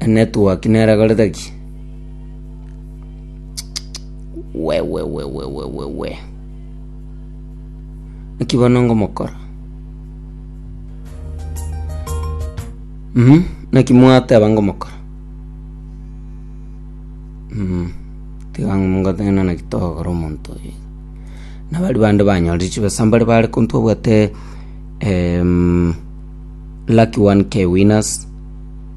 Enetwork nerekorete ki? Wewewewewewe. Naki bono ngomokora. Mhm, naki mwateba ngomokora. Mhm. Tiga ngotebe naki naki togokora omonto oyo. Nabari bande banyore chibesa mbare bare konto obwate em lucky 1k winners.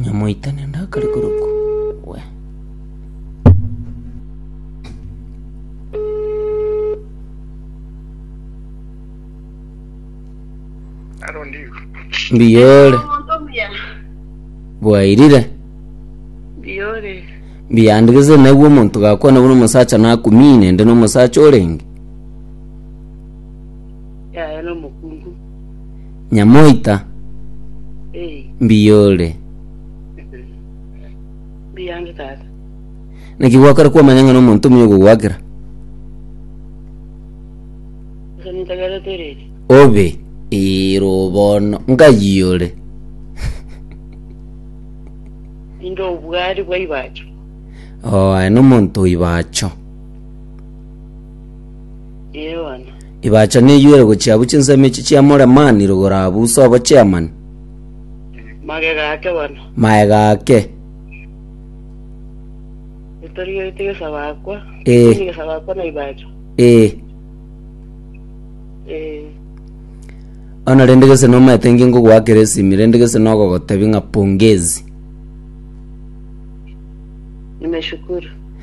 Nyamoitane ndakare korokwa. We. Aro ndigo. Mbiyore. Omonto omuya. Bwairire. Biyore. Mbiyandigeze naiwe omonto gakwana buna omosacha nakumine ndi nomosacha orenge. yaye nomokungu. Nyamoita, Ee, mbiyore. mbiyange tata. Naki gwakora kwamanya ng'a nomonto omuya ogogoakera? Ase nintagere tereri. Obe iro bono ngayiyore. Ninde obwari bwa Ibacho. Oo, aye nomonto o Ibacho. Ee bono. Ibaacha neyoire gochia abwo chinsemo echi chiamore mani rogoro abwo usa obochemani. Magega ake bono. Magega ake. Torigeretie gesaba akwa. Eh. Tindi gesaba akwa na Ibaacha. Eh. Eh. Ono rende gese nomaete nge ngogoakera esimi rende gese nogogotebi ng'a pongezi. Nimeshukuru.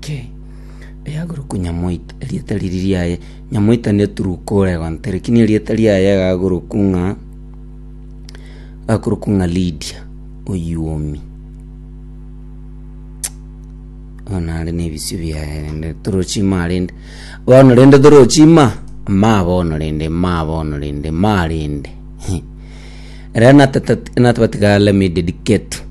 Ki? Eyagoro ku Nyamoita, erieta riri riaye Nyamoita neturuko ore gonte, lakini erieta riaye agagoro ku ng'a agakoro ku ng'a Lydia oyuomi. Bono are na ebisio biaye rende torochi ma rende. Bono rende torochi ma, ma bono rende, ma bono rende, ma rende. Ere natata natabatigare mi dedicate.